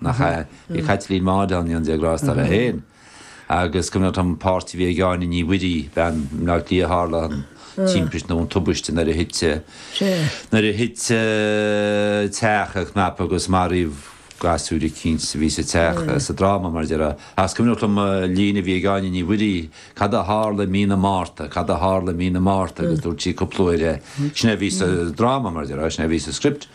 nach ea? Bhí Caitlín Maude ann agus is cuimhin liom an pháirt a bhí ag Áine Ní Mhuirí, i mBleá Cliath a tharla an timpiste nó an tubaiste nuair a thit nuair a thit teach ina chnap agus maraíodh gasúir eicínt a bhí sa teach sa dráma mar déarfá agus is cuimhin liom líne a bhí ag Áine Ní Mhuirí, cad a tharla i mí na Márta, cad a tharla i mí na Márta agus dúirt sí cúpla uair é. Sin é a bhí sa dráma mar déarfá, sin é a bhí sa script.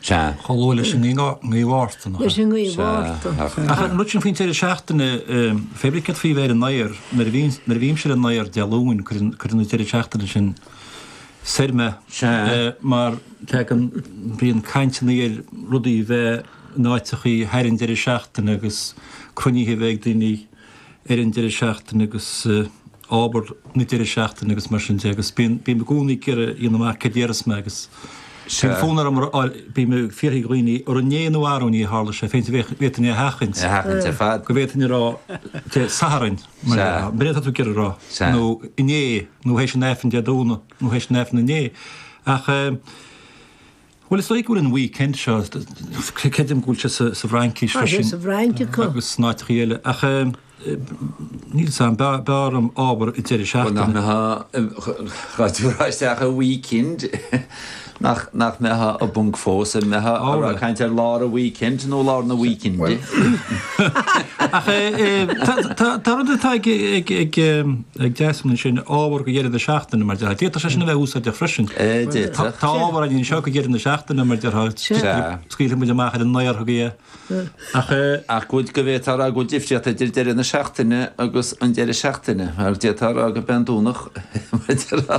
Sea. Chomh luath leis an ngaoth Mhárta, nach ea? Leis an ngaoth Mhárta. Ach an rud sin faoin deireadh seachtaine, féadfaidh mé a rá faoi bheith ar an aer, nuair a bhíonn, nuair a bhímse ar an aer Dé Luain, cuireann, cuireann an deireadh seachtaine sin soir mé. Sea. Mar tagann, bíonn cainteanna ar rudaí a bheith in áiteachaí thar an deireadh seachtaine agus cruinnithe a bheith ag daoine. ar an deireadh seachtaine agus ábhar na deireadh seachtaine agus mar sin de agus bíonn mé i gcónaí ag iarraidh a dhéanamh amach céard a déarfas mé agus bíonn fonn orm a rá bím ag fiafraí de dhaoine an inné nó arú inné a tharla sé féin bhféadfainn bhféadfainn é a sheachaint a sheachaint ar fad. go bhféadfainn a rá Dé Sathairn mar Sea. an mbeidh tú ag iarraidh a rá Sea. nó inné nó théis an aifrinn Dé Domhnaigh nó théis an aifrinn inné ach eh. Bhuel, is dóigh go bhfuil an weekend seo, creidim go bhfuil sé sa bhFraincís freisin. Tá sé sa bhFrainc acu. Agus in áiteachaí eile. Ach níl sa an b'fhearr orm ábhar an deireadh seachtaine. Nach mbeadh, tú ag rá isteach ar weekend, nach mbeadh an ponc fós, an mbeadh muid ag caint ar lár an weekend nó lár na weekende? Ach tá rud atá ag. ag teastáil ansin, ábhar go deireadh na seachtaine, mar déarthá. D'fhéadfadh sé sin a bheith úsáideach freisin. D'fhéadfadh. Tá ábhar againn anseo go deireadh na seachtaine, mar déarthá. Scaoilfidh muid amach ar an aer chugaibh é. Ach eh, Ach go bhfuil go bhféadfá a rá go bhfuil difríocht idir deireadh na seachtaine agus an deireadh seachtaine, mar d'fhéadfá a rá go b'in Domhnach mar déarthá.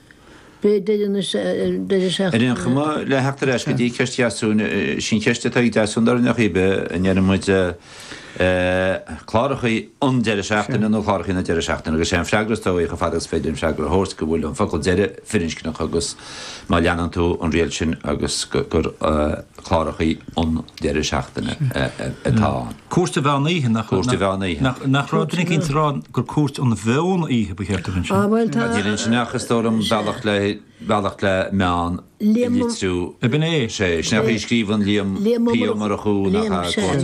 Beidh deireanas air. Ar aon chuma, le theacht ar ais go dtí ceist Dheasún, sin í an cheist atá ag Deasún dar ndóigh ar chaoi ar bith, an ndeireann muid clárachaí an deireadh seachtaine nó clárachaí na deireadh seachtaine agus is é an freagra is dóigh chomh fada agus is féidir an freagra a thabhairt go bhfuil an focal deireadh firinscneach agus má leanann tú an riail sin agus gur clárachaí an deireadh seachtaine atá ann. Cúirt an Mheon Oíche, nach raibh? Cúirt an Mheon Oíche. Nach raibh duine eicínt ag rá gur Cúirt an Mheon Oíche ba cheart a bheith ansin? Ah bhuel tá. Níl ansin ach is dóigh liom bealach le, bealach le Meán a litriú. Liam Ó. B'in é. Sé, sin é a scríobhann Liam P. Ó Murchú nach ea?